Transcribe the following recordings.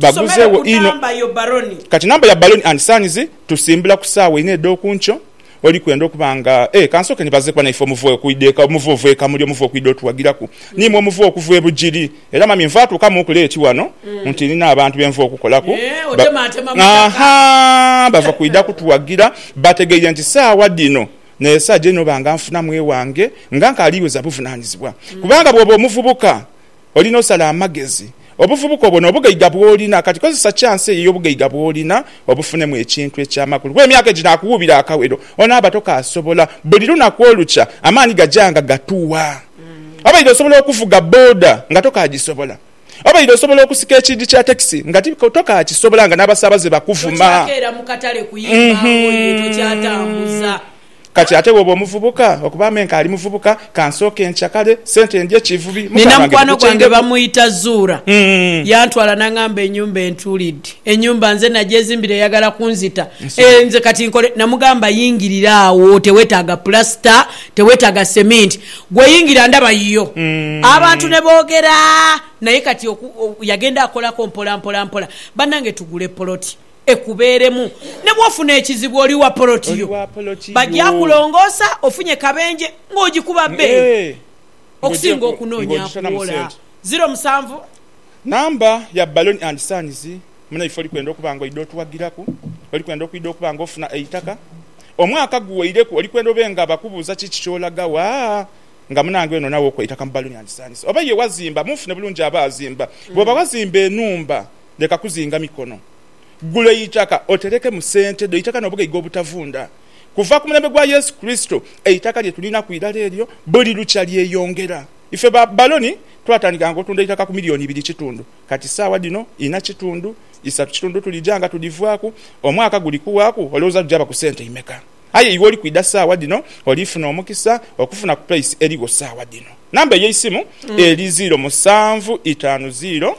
Tusomere ku namba yo baloni. Kati namba ya baloni and sanizi tusimbula ku saawa ina edhokunkyo, oli kwenda okuba nga e. Kansooke nibaze kuba naife omuva okwida eka, omuva ova ekamuli, omuva okwida otuwagiraku. Niimwe omuva okuva e Bugiri. Era mami nva atuukamuuku leeti wano nti nina abantu be nva okukolaku. Ahaa, bava kwida kutuwagira. Bategeire nti saawa dhino n'esaa gye noba nga nfunamu ewange nga nkaali weza buvunanizibwa. Kubanga bwoba omuvubuka. Olina osala amagezi. Obuvubuka obwo n'obugaiga bw'olina kati, kozesa chansi eyo ey'obugaiga bw'olina obufunemu ekintu eky'amakulu. Kuba emyaka egyo nakuwuubira akawero, onaaba tokaasobola. Buli lunaku olukya, amaani gaja nga gatuwa. Obaire osobola okuvuga bboda nga tokaagisobola. Obaire osobola okusika ekiidi kya takisi nga tokaakisobola nga n'abasaabaze bakuvuma. Tokyakeera mu katale kuyimba ngoye, tokyatambuza Kati ate bw'oba omuvubuka, okuba me nkaali muvubuka, ka nsooke ncakale sente ndye ekivubi, muka Nina gwange mukwano gwange gukyengeku. bamwita Zuurah. Yantwala n'angamba enyumba entuulidde. Enyumba nze nagyezimbira eyagala kunzita. Eh, nze kati nkole? Namugamba yingirira agho, tewetaaga pulasita, tewetaaga seminti. Gwe yingira ndaba yiyo. Abantu ne boogera. Naye kati oku, oku, yagenda akolako mpola mpola mpola. Bannange tugule poloti. ekubeeremu. Ne bw'ofuna ekizibu oli wa poloti yo, baja kulongoosa ofunye kabenje ng'ogikuba bbeeyi okusinga okunoonya kuwola. Ziro musanvu. Namba ya baloni andi sainizi. Munaife oli kwenda okuba ng'oidha otuwagiraku? Oli kwenda okwidha okuba ng'ofuna eitaka? Omwaka guweireku oli kwenda obe nga bakubuuza kiki ky'olaga wa? Nga munange ono nawe okwa eitaka mu baloni andi sainizi? Oba ye wazimba, munfune bulungi aba azimba. Bw'oba wazimba enhumba. leka kuzinga mikono. Gula eitaka otereke mu sente dho eitaka n'obugaiga obutavunda. Kuva ku mulembe gwa Yesu Kurisito, eitaka lye tulinaku irala eryo buli lukya lyeyongera. Ife ba baloni twatandika nga otunda eitaka ku milioni ibiri kitundu, kati saagha dhino ina kitundu, isatu kitundu tulija nga tudhivaaku. Omwaka guli kuwaaku olowooza lujaba ku sente imeka? Aye iwe oli kwidha saagha dhino oli funa omukisa okufuna ku pulaisi erigho saagha dhino. Namba eyeisimu eri ziiro musanvu itaanu ziiro.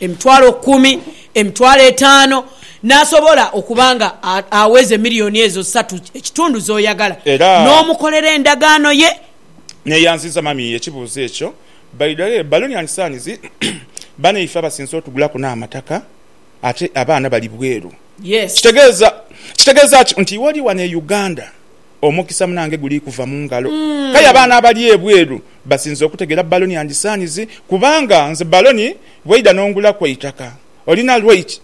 emitwalo kumi, emitwalo etaano, n'asobola okuba nga aweza emiliyoni ezo satu ekitundu z'oyagala, n'omukolera endagaano ye. Neeyanziza mami ekibuuzo ekyo. By the way baloni and sons banaife abasinze otugulaku n'amataka ate abaana bali bweru kitegeeza kitegeeza ki nti iwe oli wano e Uganda? Omukisa munange guli kuva mu ngalo. Kale abaana abali ebweru basinze okutegeera baloni and sons kubanga nze baloni bweidha nongulaku eitaka olina right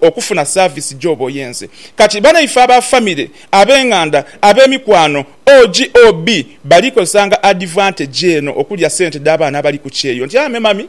okufuna service gyoba oyenze kati banaife aba family, abenganda, abemikwano, OGOB bali kozesanga advantage eno okulya sente dhabaana abali ku kyeyo nti ame mummy.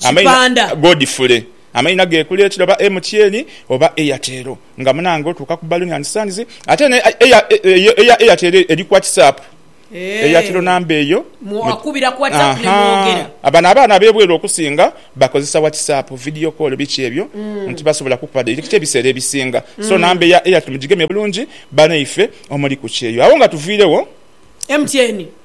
Kipanda. Godfrey. Amaina ge kuli ekiro oba MTN oba Airtel nga munange otuuka ku balloon and sons ate eno eya eya Airtel eri ku whatsapp eya kiro number eyo Mwakubira ku whatsapp ne mwogera. Ahaa bano abaana abebweru okusinga bakozesa whatsapp, video call biki ebyo nti tibasobola kukuba direct ebiseera ebisinga so number eya Airtel mugigeme bulungi banaife omuli ku kyeyo. Agho nga tuviiregho. MTN.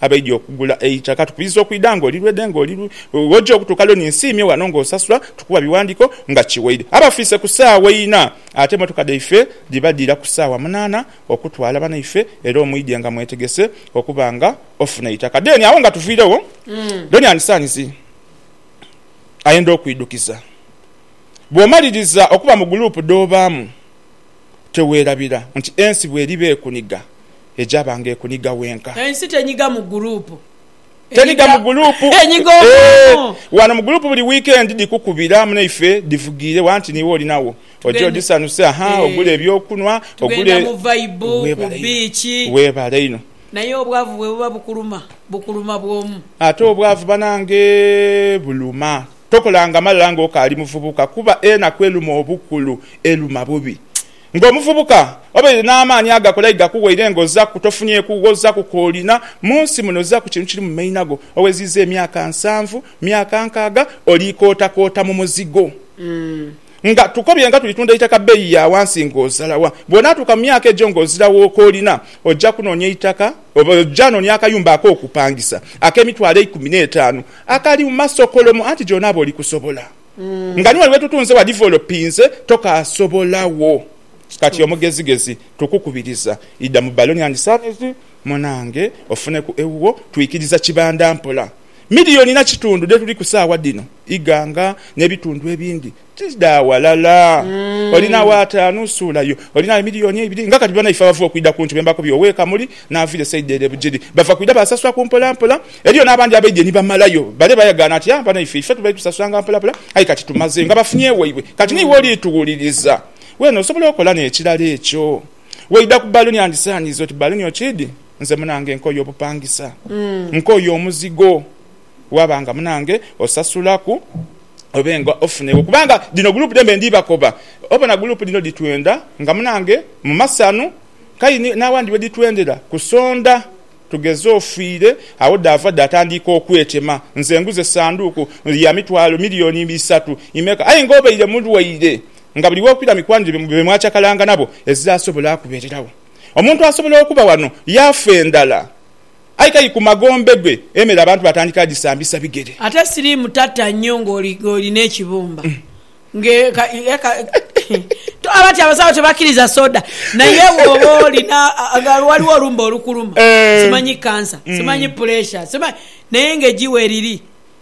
abaidhi okugula eitaka tukubiriza okwidha nga oli lwede nga oli lwe wojja okutuuka lyo ninsiimye wano nga osasula tukuwa biwandiko nga kiweide abafiise ku saawa ina ate emotoka dhaife dhiba dhira ku saawa munaana okutwala banaife era omwidhe nga mwetegese okuba nga ofuna eitaka then agho nga tuviiregho Donian Sons ayenda okwidhukiza bwomaliriza okuba mu group dhobaamu. teweerabira nti ensi bw'eriba ekuniga, egyaba nga ekuniga wenka. Ensi tenyiga mu guruupu. Tenyiga mu guruupu. Enyiga omwoomu. Wano mu guruupu buli wiikendi dhikukubira munaife dhivugiire wa nti niiwe olinagho oje odhisanuse, aha, ogule eby'okunhwa, ogule. Weebale inho. Weebale inho. Naye obwavu bwe buba bukuluma, bukuluma bwomu. Ate obwavu banange buluma. Tokolanga malala ng'okaali muvubuka, kuba enaku eluma obukulu eluma bubi. Ng'omuvubuka, obaire n'amaani agakola aye gakuwaire ng'ozaku tofunyeku wozaku k'olina. Mu nsi muno zaku kintu kiri mu maina go. Oweziiza emyaka nsanvu, myaka nkaaga oli kootakoota mu muzigo. Nga tukobye nga tulitunda eitaka bbeyi ya wansi ng'ozalawa. Bw'onaatuuka mu myaka egyo ng'ozirawo k'olina, oja kunoonya eitaka. Oja nonia akayumba ak'okupangisa ak'emitwalo eikumi n'etaanu akali mu masokolomo, anti gyona aba oli kusobola. Nga ni wali we tutunze wa divolopinze, tokaasobola wo. Kati omugezigezi, tukukubiriza, idha mu baloni andi saizi, munange, ofuneku ewuwo. Twikiriza kibanda mpola. Milioni na kitundu dhe tuliku saawa dhino, ighanga n'ebitundu ebindi. Tidha ghalala. Olinagho ataanu, suula yo. Olinagho emiliyoni eibiri. Nga kati banaife abava okwidha ku nti be mbakubye ow'e Kamuli n'avira e saidi ere e Bugiri, bava kwidha baasasula ku mpolampola. Eriyo n'abandi abaidye ni bamalayo bale bayagaana nti, Aa, banaife ife tubadde tusasulanga mpolapla aye kati tumaze. Nga bafunye ewaibwe. Kati n'iwe oli tuwuliriza. Weene osobola okola n'ekirala ekyo. Weidha ku baluni andisaaniiza oti, Baluni okiidhi, nze munange nkooye obupangisa. Nkooye omuzigo. waba nga munange osasulaku obe nga ofunegho kubanga dhino group dhembe ndi bakoba obona group dhino dhitwenda nga munange mu masanu kale ni n'awandi we dhitwendera kusonda tugeze ofiire agho dhaava dhatandiika okwetema nze nguze sanduuku ya mitwalo million isatu imeka aye nga obaire mulwaire nga buli w'okwira mikwanire be mwacakalanga nabo ezirasobola kubereragho. Omuntu asobola okuba wano yaafa endhala. Aye kali ku magombe gwe emere abantu batandika agisambisa bigere. Ate siriimu tatta nnyo ng'olina ekibumba. Tughambe ati abasawo tebakiriza soda naye bwoba olina nga waliwo olumbe olukuluma simanyi kansa simanyi puleesha simanyi naye ng'eji weriri.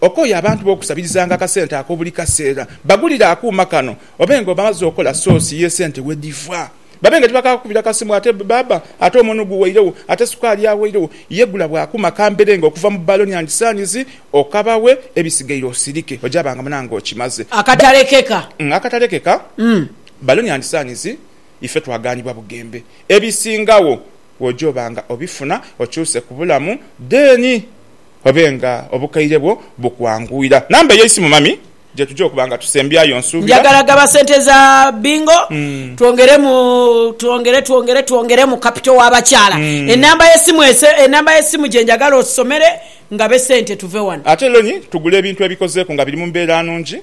Okooye abantu bo okusabirizanga akasente ako buli kaseera. Bagulire akuuma kano obe nga omaze okola soosi y'esente we dhiva. Babe nga tibakaakukubira kasimu ate baaba ate omunhu guweiregho ate sukaali aweiregho. Ye gula bwa akuuma kambere nga okuva mu baloni andi saanizi okabawe ebisigaire osirike ogyaba nga munange okimaze. Akatalekeka. Akatalekeka, Baloni andi saanizi ife twagaanibwa bugembe. Ebisingagho Bw'oja oba nga obifuna okyuse ku bulamu dheeni obe nga obukaire bwo bukwanguyira. Namba ey'eisimu mami gyetuja okuba nga tusembyayo nsuubira. Njagala gaba sente za bingo twongeremu twongere twongere twongeremu kapito w'abakyala. Enamba y'esimu enamba y'esimu gye njagala osomere ngabe sente tuve wano. Ate lonyi tugule ebintu ebikozeeku nga biri mu mbeera nungi.